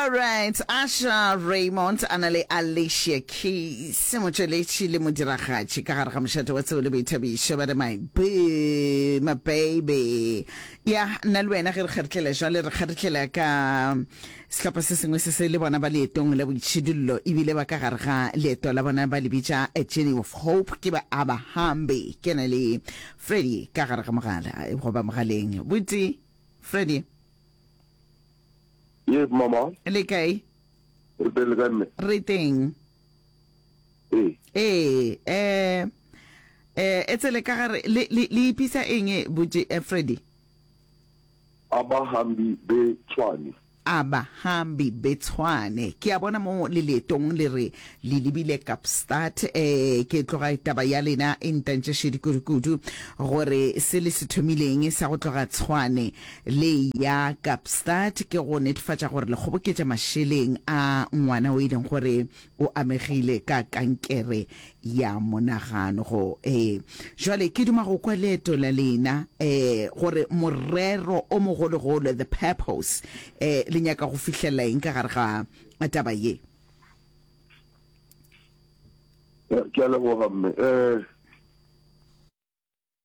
All right, Asha Raymond a na le Alicia Keys, motšweletši le modiragatši ka gare ga mošate wa tseo le boithabišo ba re my boo, my baby. Ya, nna le wena ge re kgaritlela jwale re kgaritlela ka sehlopha se sengwe se se le bona ba leetong la boitšhidullo ebile ba ka gare ga leeto la bona ba le bitša a journey of hope ke ba abahambi ke na le freddy ka gare ga mogala goba mogaleng botse Freddy. Yes, mama. Le kae? Re teng le kae mme? Re teng. Ee. Ee, eh eh e tsele ka gare le le ipisa eng e botse eh, Freddy? Abahambi be Tshwane. A Bahambi be Tshwane, ke a bona mo le leetong le re le lebile Kapstad. Eh, ke tloga taba ya lena e ntantša šedi kudukudu, gore se le se thomileng sa go tloga Tshwane le eya Kapstad ke go netefatša gore le kgoboketša mašeleng a ngwana o e leng gore O amegile ka kankere ya monagano. Go, ee. Jwale, ke duma go kwa leeto la lena, ee, gore morero o mogologolo, the purpose, ee, le nyaka go fihlelela eng ka gare ga taba ye. Ke a leboga, mme. Ee.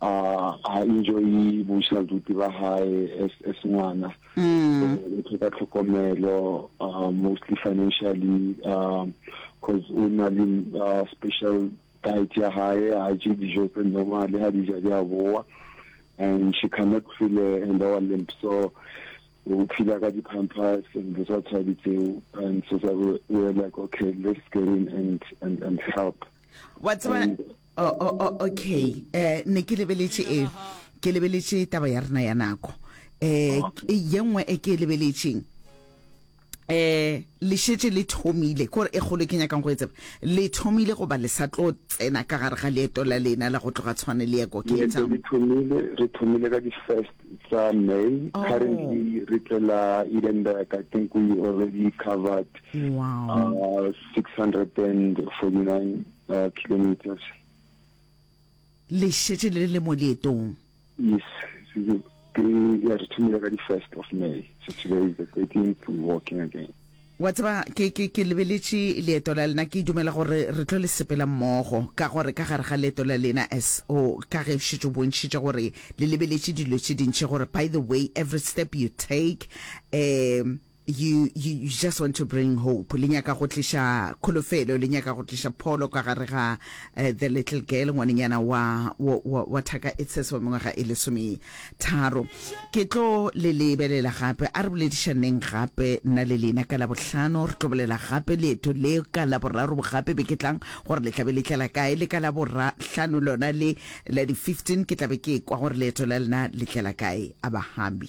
A ha enjoy-e bošaduti ba hae as as ngwana. So o tlhoka tlhokomelo mostly financially cause o na le special diet ya hae, ha je dijo tse normal, ha di ja di a boa and she cannot feel her lower limb. So o phela ka di-pampers and dilo tsa tshwadi tseo and so we're like okay let's get in and and and help. Wa tseba o o o okay eh ne ke lebeletše e ke lebeletše taba ya rena ya nako eh ye nngwe e ke e lebeletšeng eh le šetše le thomile kore e kgolo ke nyakang go e tseba le thomile goba le sa tlo tsena ka gare ga leeto la lena la go tloga tshwane le ya ko Cape Leeto Town le thomile re thomile ka di first tsa may Oh. currently re tlela edenburg i think we already covered wow uh, 649 uh, kilometers. Le šetše le le mo leetong? Yes, ke ya re thomile ka di first of May. So today is the 13th, we walking again. wa tseba ke ke ke lebeletše leeto la lena ke dumela gore re tlo le sepela mmogo ka gore ka gare ga leeto la lena as o ka ge šetše o bontšhitše gore le lebeletše dilo tše dintšhi gore by the way every step you take um You, you, you just want to bring hope. Le nyaka go tliša kholofelo, le nyaka go tliša pholo ka gare ga uh, the little girl, ngwanenyana wa, wa, wa, wa thaka e tshese wa mengwaga e lesometharo. Ke tlo le lebelela gape, a re boledišaneng gape nna le lena ka Labohlano. Re tlo bolela gape leeto le ka Laboraro bogape be ke tlang gore le tlabe le tlela kae, le ka Laborahlano lona le la di-15 ke tlabe ke kwa gore leeto la lena le tlela kae, a bahambi.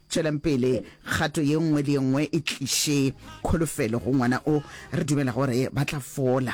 Tšwelang pele, kgato ye nngwe le ye nngwe e tliše kholofelo go ngwana o re dumelago gore ba tla fola.